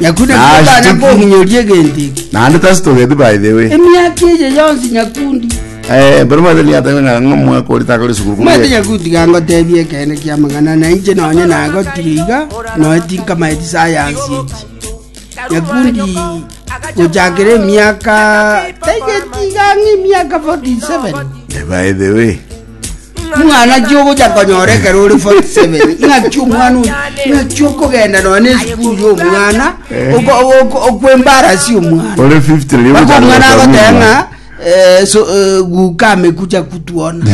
Nyakundi Na ase tokotanya tiki- kohinyori egento eke. naende tasitogeti by the way Emiaka eye yonsi nyakundi. Eh, mbere mwete niatebe ng'a ng'omwaka ori takore sukuru Mwete kumbe nyakundi gangotebia ekene kia mang'ana na inche nonye nagotire iga noe tinkamaeti sayansi eki. Nyakundi gochakera emiaka taigeti iga ng'a emiaka 47. Eh, by the way Mwana ki ogocha konyora ekero ore 47 ng'aki omwana oyo ng'aki okogenda nonya na esukuru ya omwana oko- oko- okwembarasi omwana Ore 50 rigo Bako omwana chakogota agoteba muna. ng'a eh, so, eh, guka amekucha kutuona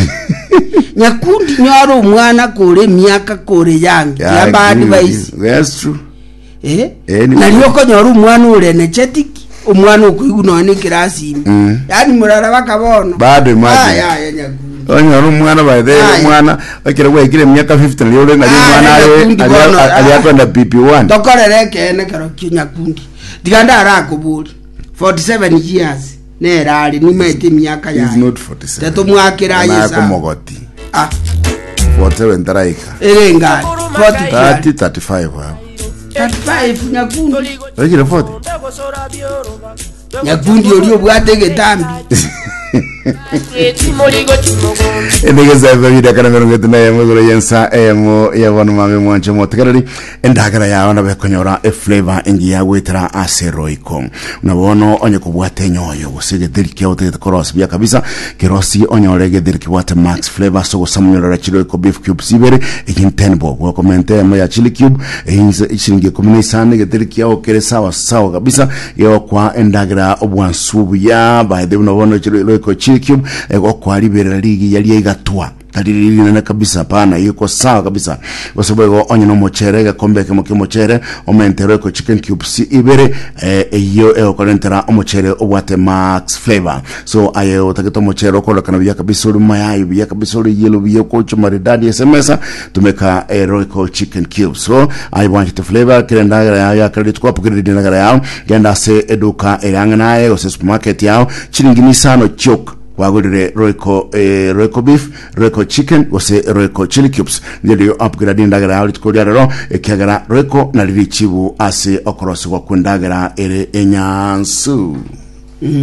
nyakundi nyora omwana kore emiaka kore yange Yeah, I yamba agree with advice you. That's true. Eh, Eh, ni- nari okonyora omwana orenecheti ki omwana okoigu noe nekirasi ime Mm. yaani murara baka bono Bado imagine. Aya, aya, nyakundi. onyora omwana baethe Aye. omwana ekero gwaikire emiaka 50 nari ore nari Ah, omwana nari are- nakundi ari- bono, ari- ari ah. akwenda pipi one tokorera ekeene kerokio nyakundi tiga ndarakobori 47 years Nere are nyuma ete emiaka He is yaye. not 47. Tatomwakera Onye aye naye esaa. komogoti. Ah, 47 taraika. ere ngari. 40 kiari. 30, 35 abo. 35 nyakundi. Oikire 40? Nyakundi ori obwate egetambi. Enegeza bibiri akana mirongo itatu na emo igoro yensa emo ya bono mame mwanche motekereri Endagera yao nabo ekonyora eflavor engiya goetera ase roiko. Buna bono onye kobwate enyoyo gose egetheri kiao otagete korosia buya kabisa, kerosie onyore egetheri kebwate max flavor ase ogosama onyorere chiroiko beef cubes ibere, egin ten bob, okomenta eyemo ya chili cube, eins chiringi ikomi na isano egetheri kiao kere sawa sawa kabisa gegokoa endagera obwansu obuya by the way buna bono chiro roiko chili cube egokoa riberera rigiya ria igatwa. Tari rinene kabisa, pana eye kwa sawa kabisa. Gose boigo onye n'omochere, egekombe ekemo ki'omochere, omente Royco chicken cubes ibere, eh, eyio egokorentera omochere obwate max flavor. So aye otagete omochere okorokana buya kabisa ori mayayi buya kabisa ori yellow buya okochi maridadi ase emesa, tumeka eh, Royco chicken cubes. So aye bwanchete flavor, kera endagera yao ya kera rituko apokereri endagera yao, genda ase eduka eri ang'e naye gose supermarket yao, chiringi nisano chioka Kwagorire Royco eh, Royco beef, Royco chicken gose Royco chili cubes. Ngende yo apugera nendagera yao rituko ria rero, ekiagera Royco nari richibu ase okorosigwa kw'endagera ere enyansu.